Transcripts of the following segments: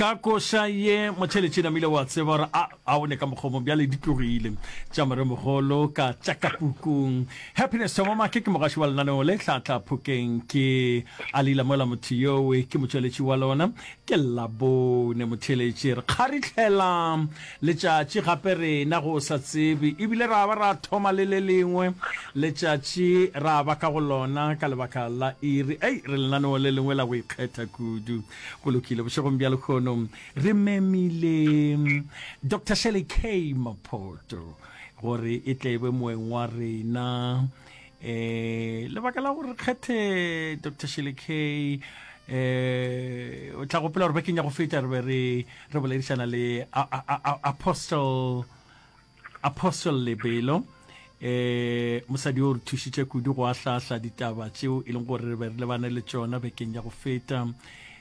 ka koša ye motšheletše namile wa tseba gore a a o ne ka mokgomong bjale di tlogile tša moremogolo ka tša ka pukung happiness thomamake ke mogaši wa lenaneo le tlhatla phokeng ke a lila mola motho yowe ke motšweletši wa lona ke labone motšheletše re kgaritlhela Letšatši gape rena go sa tsebe, ebile ra ba ra thoma le le lengwe letšatši ra ba ka go lona ka lebaka la iri. Ei, re lenaneo le lengwe la go ikgetha kudu. Go lokile, bošegong bja lekhono re memile Doctor Shirley K. Maphoto gore e tle e be moeng wa rena um lebaka la gore kgethe dr shelekay um o tla gopela gore bakeng ya go feta re be re re boledišana le apostle apostle lebelo um mosadi o re thušitše kudu go ahlahla ditaba tšeo e leng gore re be re lebane le tšona bekeng ya go feta um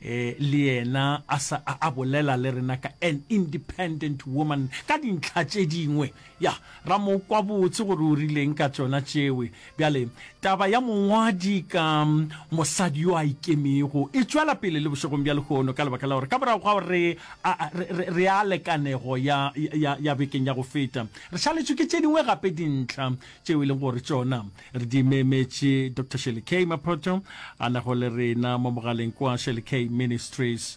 eh, le yena a sa a bolela le rena ka an independent woman ka dintlha tše dingwe Ya, ra mo kwa botse gore o rileng ka tšona tšewe. Bjale, taba ya mongwadi ka mosadi yo a ikemego e tšwela pele le bošegong bja lehono, ka lebaka la gore ka morago ga gore re, a, re, re, re a le kanego ya, ya, ya bekeng ya go feta, re šaletšwe ke tše dingwe gape dintlha tšeo e lego gore tšona re di memetše. Doctor Shirley K. Maphotho a nago le rena mo mogaleng kwa, Shirley K. Ministries.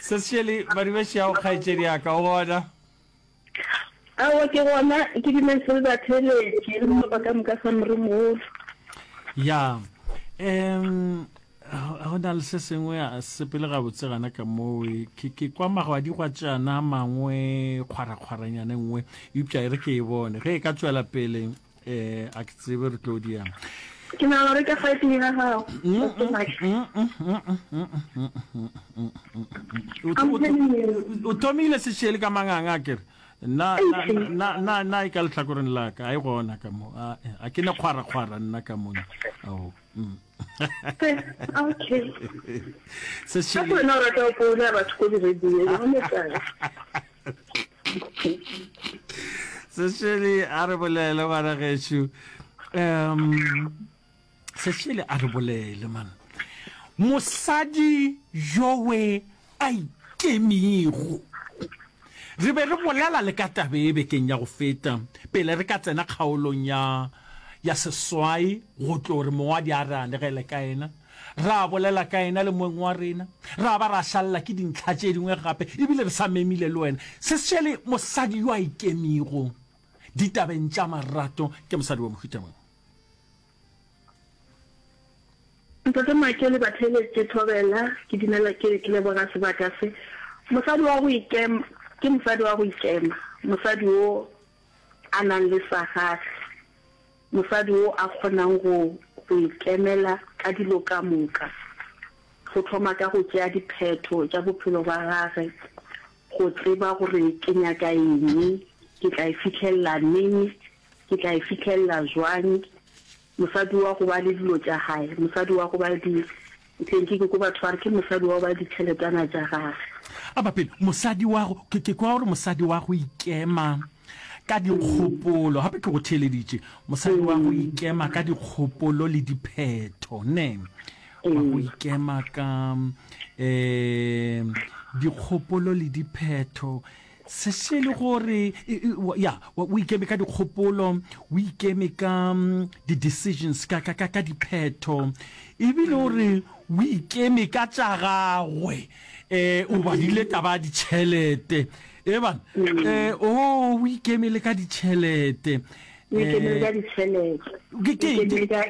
sesešele madumešago kgaetšedi ya ka o gona awa ke gona ke dumešo le batheletše le maloba ka moka sa moremogolo ya um go na le se sengwe a sepele gabotse gana ka moe ke kwa magwadigwa tšana mangwe kgwarakgwaranyane nngwe eupša e re ke e bone ge e ka tšwela pele eh a ke tsebe re tlo diang ke na gore ka fa tleng ga gago o thomile sešele ka manganga a kere na e ka lehlakoreng la ka a e gona ka mo a ke ne kgwarakgwara nna ka mone ao mm. sešele sešele a re bolele ngwana gešo um sešele a re bolele man mosadi yowe a ikemigo re be re bolela le ka tabe e bekeng ya go feta pele re ka tsena kgaolong ya ya seswai go tlo re mongwadi a re anegele ka ena Ra bolela ka yena le moeng wa rena, ra ba ra šalela ke dintlha tše dingwe gape, e bile re sa memile le wena. Se šele mosadi yo a ikemego ditabeng tša marato ke mosadi wa mohuta mang? Ntate Maake le batheeletše thobela, ke dumela ke leboga sebaka se. Mosadi wa go ikema ke mosadi wa go ikema, mosadi wo a nang le sa gagwe. Mosadi wo a kgonang go go ikemela ka dilo ka moka, go thoma ka go tšea diphetho tša bophelo bja gage, go tseba gore ke nyaka eng, ke tla e fihlelela neng, ke tla e fihlelela bjang, mosadi wa go ba le dilo tša gae, mosadi wa go ba le di Tle ke ke ko batho ba re ke mosadi wa go ba ditšheletana tša gage. A ba pele mosadi wa go ke ke kwa gore mosadi wa go ikema ka dikgopolo gape ke go theeleditše mosadi wa go ikema ka dikgopolo le diphetho ne wa go ikema ka um dikgopolo le diphetho Se se le gore, ya, o ikeme ka dikgopolo, o ikeme ka di-decisions, ka, ka, ka, ka diphetho, ebile o re o ikeme ka tša gagwe. Um o badile taba ya ditšhelete, e bana, um o o ikeme le ka ditšhelete. O ikeme le ka ditšhelete, o ikeme ka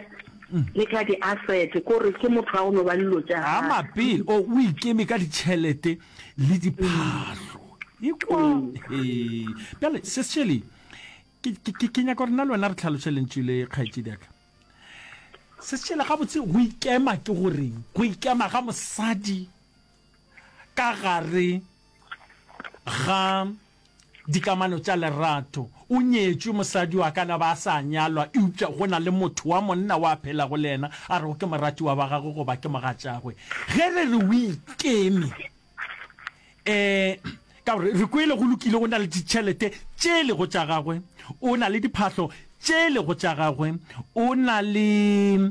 le ka di-asset, ko re ke motho wa go no ba le dilo tša gagwe. A mapele, o o ikeme ka ditšhelete. le diphahlo ekwa bjale sesele ke nyaka gore na le wena re tlhaloše lentšu le kgaetše diaka sesele gabotse go ikema ke goreng go ikema ga mosadi ka gare ga Dikamano tša lerato. O nyetšwe, mosadi o a ka na ba a sa a nyalwa, eupša go na le motho wa monna o a phelago le yena a rego ke moratiwa wa gagwe goba ke mogatšagwe. Ge re re o ikeme, um ka gore re kwele go lokile o na le ditšhelete tše e lego tša gagwe, o na le diphahlo tše e lego tša gagwe, o na le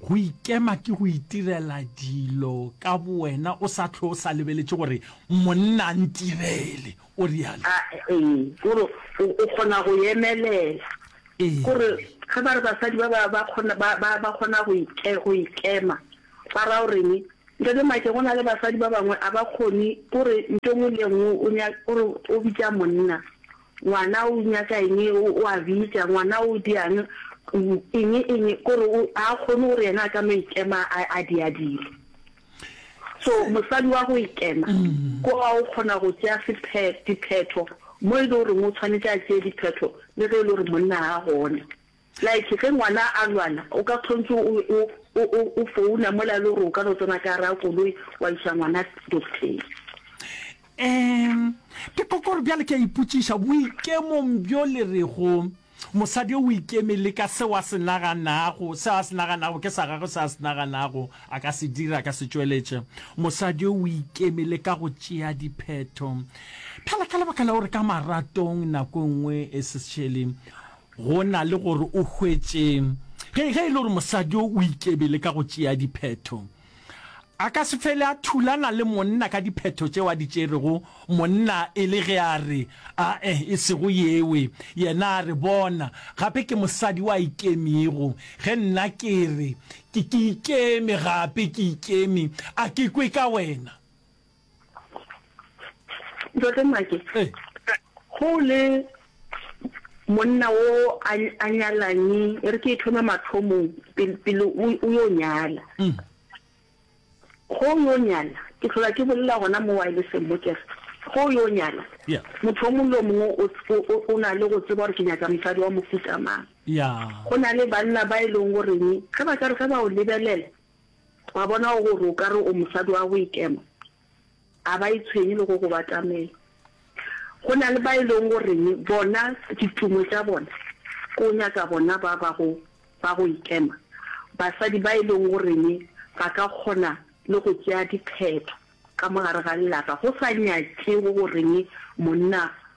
Go ikema ke go itirela dilo ka bowena o sa hlwe o sa lebeletše gore monna a ntirele, o realo. Ee, gore o kgona go emelela. Gore ge ba re basadi ba ba ba kgona ba ba ba kgona go ike go ikema ba ra goreng? Ntate Make go na le basadi ba bangwe a ba kgone gore nto ngwe le nngwe o nya gore o bitša monna. Ngwana o nyaka eng, o a bitša, ngwana o diang, eng, eng, kore a kgone gore yena a ka no ikema a di a dilo. So mosadi wa go ikema mm. ko a o kgona go tšea diphetho mo e le goreng o tshwanetse a tšee diphetho le ge e le gore monna ga gona. Like ge ngwana a lwala o ka kgontse o o o o o founa mola le gore o ka no tsena ka gare ga koloi wa iša ngwana docteng. Ehm, ke ko kore bjale ke a ipotšiša boikemong bjo le rego mosadi o ikeme le ka seo a se naganago, seo a se naganago ke sa gagwe, seo a se naganago a ka se dira, a ka se tšweletše. Mosadi o ikeme le ka go tšea diphetho. Bjale ka lebaka la gore ka maratong nako e nngwe e se šele Go na le gore o hwetše ge, ge e le gore mosadi yo o ikebele ka go tšea diphetho, a ka se fele a thulana le monna ka diphetho tšeo a di tšerego, monna e le ge a re, A-e, e sego yewe. Yena a re, Bona, gape ke mosadi wa ikemego, ge nna ke re, Ke, ke ikeme, gape ke ikeme, a ke kwe ka wena. Ntate Make, Ee. go le monna o a a nyalane e re ke e thoma mathomong pele pele o o yo nyala Mm. go o yo nyala ke tlhola ke bolela gona mo wirelesseng mo kere go o yo nyala Yeah. motho o mongwe le o mongwe o- o- o- o na le go tseba gore ke nyaka mosadi wa mofuta mang Ya. go na le banna ba e leng goreng ge ba ka re ge ba o lebelela Wa bona gore o ka re o mosadi wa go ikema, a ba itshwenye le go go batamela. Go na le ba e leng goreng bona ditumo tša bona ke o nyaka bona ba ba go ba go ikema, basadi ba e leng goreng ba ka kgona le go tšea diphetho ka mo gare ga lelapa go sa nyakego goreng monna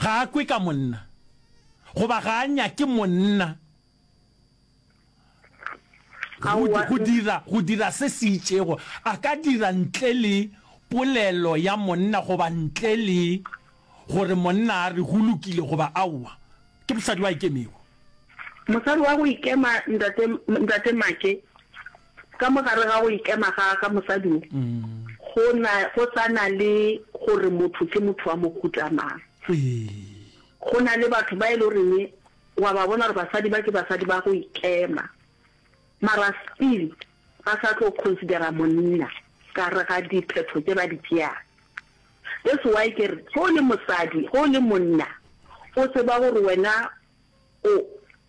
Ga a kwe ka monna, goba ga a nyake monna go dira, go dira se se itšego. A ka dira ntle le polelo ya monna goba ntle le gore monna a re go lokile goba aowa. Ke mosadi wa ikemego. Mosadi wa go ikema, Ntate, Ntate Make. Ka mo gare ga go ikema ga, ga mosadi wo, go na, go sa na le gore motho ke motho wa mohuta mang. Go na le batho ba e le goreng wa ba bona gore basadi ba ke basadi ba go ikema, mara still ba sa tlo considera monna ka re ga diphetho tse ba di tšeang. That's why ke re ge o le mosadi, ge o le monna, o tseba gore wena o,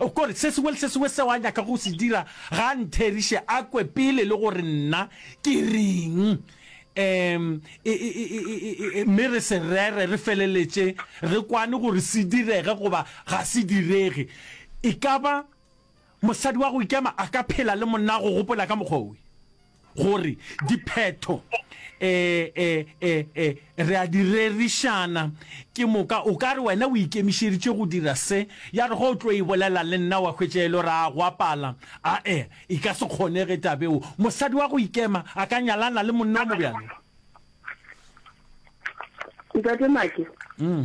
O kore, Se sengwe le se sengwe seo a nyakago go se dira, ga a ntheriše a kwe pele le gore nna ke reng, um, e, e, e, e, e, e, mme re se rere, re feleletše re kwane gore se direge goba ga se direge. E ka ba mosadi wa go ikema a ka phela le monna wa go gopola ka mokgwa wo? gore diphetho e e e e re a di rerišana ke moka o ka re wena o ikemišeditše go dira se ya re go o tlo e bolela le nna wa hwetša e le ra go apala a e e ka se kgonege tabeo mosadi wa go ikema a ka nyalana le monna wa mobjalo ntate make mm.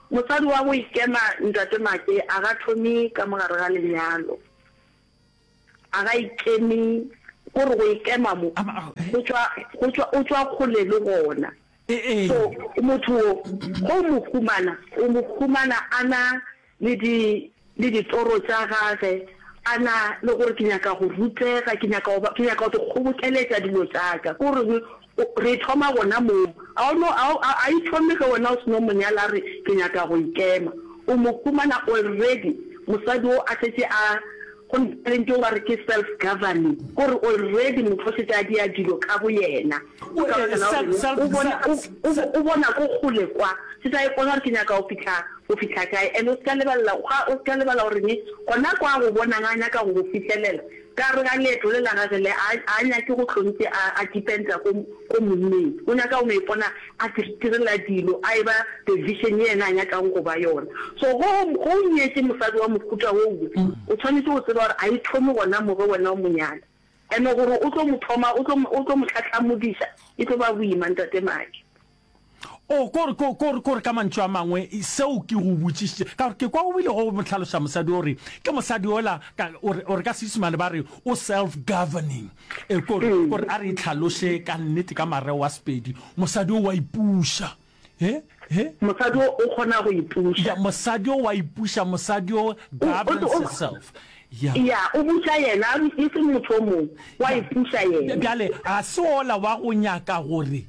Mosadi wa go ikema, Ntate Make, a ga thome ka mo gare ga lenyalo. A ga ikeme, ko re go ikema mo, go tšwa, go tšwa, o tšwa kgole le gona. So, motho wo, ge o mo humana, o mo humana a na le di. le ditoro tša gage, a na le gore ke nyaka go rutega, ke nyaka go ba, ke nyaka go di kgobokeletša dilo tša ka. Ko reng? O, re e thoma gona moo. A o no, a o, a, a e thome ge wena o se no mo nyala, a re, Ke nyaka go ikema. O mo humana already, mosadi wo a šetše a, go na le ntho yeo ba re ke self-governing, ko re already motho o šetše a dira dilo ka boyena. O tla re na o reng? O bona, o, o, o bona ko kgole kwa. Se sa ipona gore ke nyaka go fihla, go fihla kae. And o se ka lebalela, ga, o se ka lebala gore ne, gona kwa a go bonang a nyaka go go fihlelela, ka gare ga leeto le la gage le, a, a a nyake go hlong ntse a, a dependa ko, ko monneng. O nyaka go no ipona a itirela dilo, a eba the vision ye yena a nyakang go ba yona. So ge o, ge o nyetše mosadi wa mohuta wo we, o tshwanetše go tseba gore a e thome gona mo ge wena o mo nyala. And gore o tlo mo thoma, o tlo, o tlo mo tlhahlamodiša, e tlo ba boima, ntate Maki. Oh, ko re, ko, ko re, ko re, ka mantšu a mangwe, seo ke go botšišitše, ka gore ke kwa o bile go mo hlaloša mosadi o re, ke mosadi ola, ka, o re, o re ka Seisemane ba re o self-governing. E, ko re, ko re a re e hlaloše ka nnete ka mareo a Sepedi, mosadi o wa ipuša. he he mosadi o o kgona go ipuša ya mosadi o wa ipuša mosadi o governs himself ya ya o buša yena e se motho o mongwe wa ipuša yena bjale ga se ola wa go nyaka gore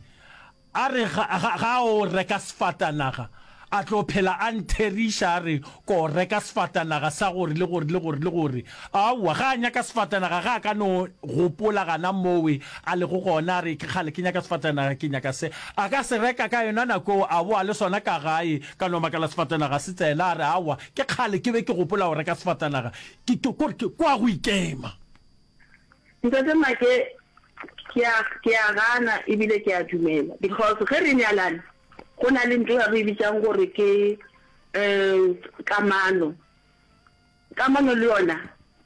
a re ga ga- ga o reka sefatanaga a tlo phela a ntheriša a re ko reka sefatanaga sa gore le gore le gore le gore Aowa, ga a nyaka sefatanaga, ga a ka no gopola gana mowe a lego gona a re, Ke kgale ke nyaka sefatanaga, ke nyaka se. A ka se reka ka yona nako eo, a boa le sona ka gae, ka no makala sefatanaga se tsena, a re, Aowa, ke kgale ke be ke gopola go reka sefatanaga. Ke, ke, kore ke, kwa go ikema. Ntate Maake, ke a, ke a gana e bile ke a dumela, because ge re nyalana, go na le nto ya re e bitšang gore ke, um, kamano. Kamano le yona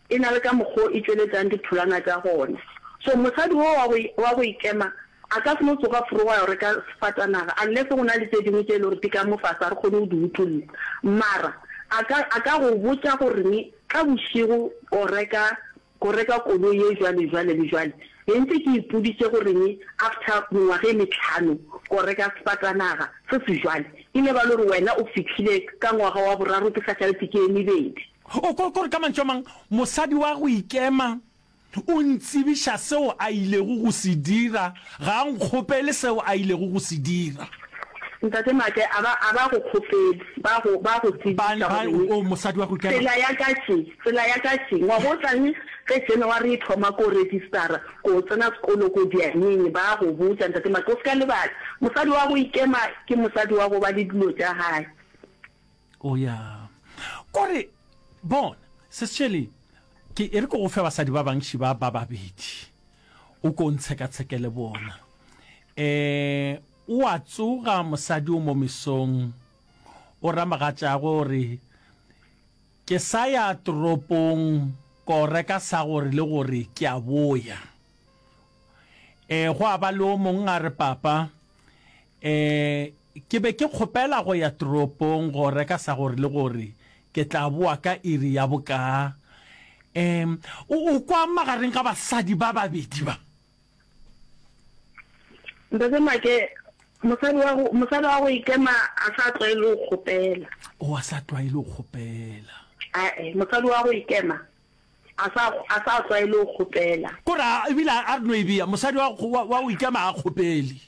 e na le ka mokgwa wo e tšweletšang ditholwana tša gona. So mosadi wo wa go wa go ikema a ka se no tsoga forogo a yo reka sefatanaga unless go na le tše dingwe tše e le gore di ka mo fa sa re kgone go di utolla. Mara a ka a ka go botša gore ne ka bošego o reka Go reka koloi ye jwale jwale le jwale be ntse ke ipoditše goreng after mengwaga e mehlano ko reka sefatanaga se se jwale e ne ba lo re wena o fihlile ka ngwaga wa boraro ke sa šaletse ke e mebedi. O ko ko re ka mantšu a mang mosadi wa go ikema o ntsebiša seo a ilego go se dira Ga a nkgopele seo a ilego go se dira. Ntate Maake, a ba, a ba go kgopele, ba go, ba go Ba, tsebiša ba, gore oo, mosadi wa go ikela. tsela ya ka tše, tsela ya ka tše. Ngwaga o tlang ge January e thoma, ko registara, ko tsena sekolo, ko dianeng, ba go botša, Ntate Maake. O se ka lebala, mosadi wa go ikema ke mosadi wa go ba le dilo tša gae. O ya. Ko re, Bona, Ses Shirley, ke e re ke go fe basadi ba bangši ba ba babedi, o ko o ntshekatsheke le bona. Um, o a tsoga mosadi o mo mesong, o ra mogatšagwe o re, Ke sa ya toropong ko reka sa gore le gore ke a boya. Um, gwa ba le o mongwe a re, Papa, um, Ke be ke kgopela go ya toropong go reka sa gore le gore ke tla boa ka iri ya bokaa. Em, o, o kwa magareng ga basadi ba babedi ba. Ntate Make, mosadi wa go, mosadi wa go ikema a sa tlwaele go kgopela. O, a sa tlwaele go kgopela. Ae, mosadi wa go ikema a sa, a sa tlwaele go kgopela. Ko ra, ebile a re no e bea, mosadi wa, wa, wa go ikema ga a kgopele.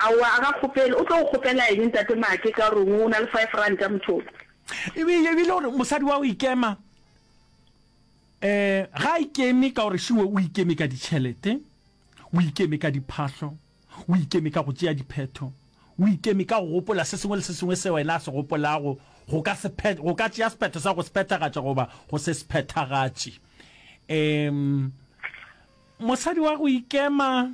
Aowa a ga kgopele, o tlo go kgopela eng ntate Make ka rong o na le five ranta mothoko. E be e bile gore mosadi wa go ikema eh ga a ikeme ka gore šiwe o ikeme ka ditšhelete, o ikeme ka diphahlo, o ikeme ka go tšea diphetho, o ikeme ka go gopola se sengwe le se sengwe se wena a se gopolago go ka se phe go ka tšea sephetho sa go se phethagatša goba go se se phethagatše. Eh mosadi wa go ikema.